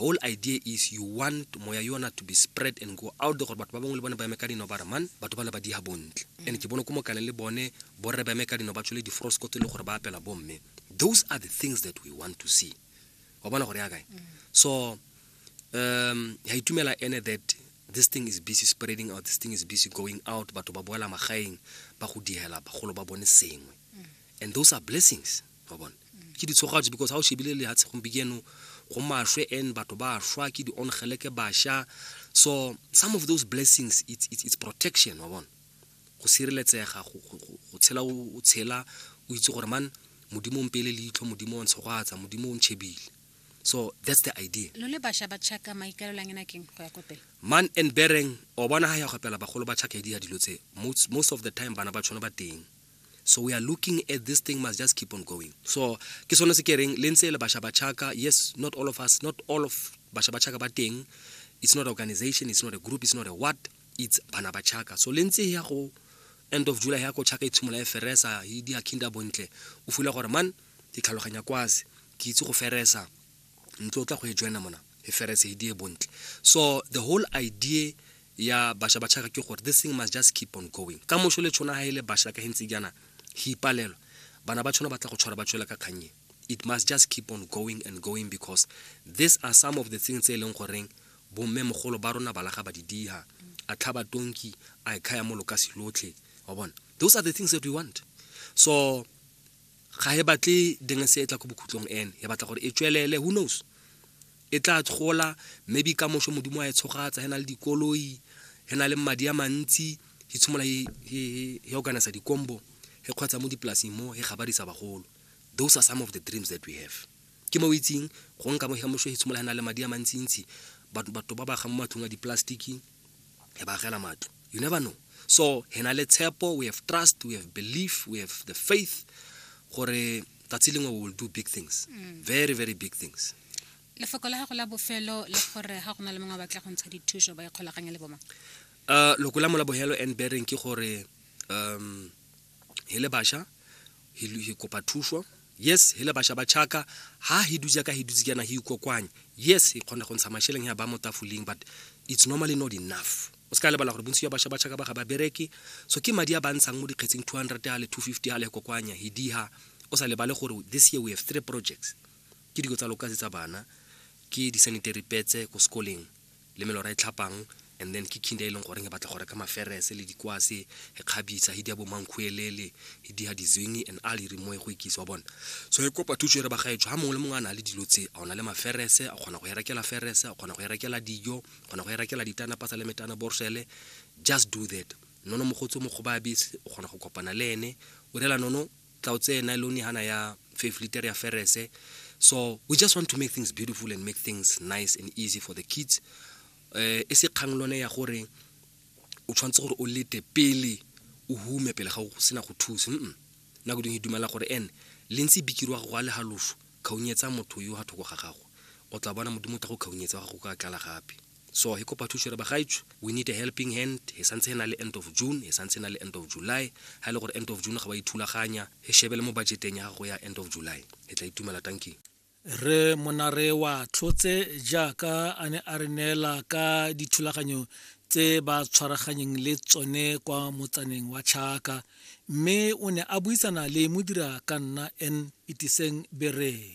whole idea is you want moya yona to be spread and go out there gore batho ba bangwe le bone ba eme ka dino ba re man batho bana ba diha bontle mm. and ke bone ko mokane le bone borre ba eme ka dino ba tshole di-frosco tse le gore ba apela bomme those are the things that we want to see wa bona gore ya kae mm. so um ya itumela ene that this thing is busy spreading out this thing is busy going out batho ba boela magaeng ba go dihela bagolo ba bone sengwe mm. and those are blessings wa bone ke ditshogatso because ga o shebile lehatshe gompieno go mashwe and batho ba shwa ke di-ongeleke basha so some of those blessings it's, it's, it's protection wa bone go sireletsega go tshela o tshela o itse gore man modimo mpele leitlho modimo o ntshogatsa modimo o ntšhebile so that's the idea lo le basha ba tšhaka maikaelolang ena keng go ya ko pele man and bereng o bona ga ya gopela bagolo ba tšhaka e di ya dilo tse most of the time bana ba tshwana ba teng so we are looking at this thing must just keep on going so ke sone se ke reng le ntse le basha ba chaka yes not all of us not all of basha ba chaka ba teng it's not organization it's not a group it's not a what it's bana ba chaka so le ntse ya go end of july ya go chaka itshimola e feresa di a kinda bontle o fula gore man ke tlhaloganya kwase ke itse go feresa ntlo o tla go e joina mona e ferese e die bontle so the whole idea ya basha ba tšhaga ke gore this thing must just keep on going ka mošo le tšhona ga e le basha ka gentse jaana go ipalelwa bana ba tšhona ba tla go tshwara ba tšwela ka kgannye it must just keep on going and going because these are some of the things tse e leng goreng bomme mogolo ba rona balaga ba di diha a tlhaba tonki a e khaya mo lokasi lotlhe wa bona those are the things that we want so ga e batle dingese e tla ko bokhutlong ene e batla gore e tswelele who knows e tla gola maybe ka moso modimo a e tshogatsa e na le dikoloi e na le madi a mantsi e tshimola e organisa dikombo e kgwatsa mo dipolasing mo e gabadisa bagolo those are some of the dreams that we have ke mo itseng go nka mo ya moso e tshimola e na le madi a mantsintsi batho ba ba ga mo matlong a dipolasetiki re ba agela matlo you never know so he na le tshepo we have trust we have belief we have the faith gore tsatsi lengwe we will do big things mm. very very big things lefoko la gago la bofelo le gore ga go na le mongwe batla go ntsha dithuso ba ikgolaganya le bomang uh loko la mola bohelo and bearing ke gore um he le basha he lu- he kopa thuso yes he le basha ba chaka ha he duja ka he dutse kana he ikokwanye yes he khona go ntsha masheleng ya ba mo tafoleng but it's normally not enough o ska lebala gore bontsi ya basha ba chaka ba ga ba bereke so ke madi a ba ntshang mo dikgetseng 200 a le 250 a le kokwanya he diha o sa lebale gore this year we have three projects ke diko tsa lokasi tsa bana ke di-sanitary petse ko sekoleng le melora e tlhapang and then ke kinda e leng goreng e batla go reka maferese le dikwase e kgabisa e dia bo mankhuelele e dia dizwingi and a lere mo e go ikisa wa bona so e kopa thuso e re ba gaetsho ga mongwe le mongwe a na le dilo tse a ona le maferese a kgona go e rekela ferese a kgona go e rekela dijo a kgona go e rekela ditana pasa le metana borsele just do that nono mogotsi o mogobabe o kgona go kopana le ene o rela nono tla o tseye nylone hana ya five liter ya ferese so we just want to make things beautiful and make things nice and easy for the kids eh e se kgang lone ya gore o tshwanetse gore o lete pele o hume pele ga o sena go thusa mm nna go dingwe dumela gore ene le ntse bikirwa go a le halofo khaunyetsa motho yo ha thoko ga gago o tla bona modimo o tla go khaunyetsa wa gago ka tlala gape so he kopa thuso re bagaetsho we need a helping hand he santse he na le end of june he santse na le end of july ha e le gore end of june ga wa ithulaganya he shebe le mo budgeteng ya gago ya end of july he tla itumela tanking re monare wa tlhotse jaaka a ne a re neela ka dithulaganyo tse ba tshwaraganyeng le tsone kwa motsaneng wa Chaka mme o ne a buisana le modira ka nna N Itiseng Bereng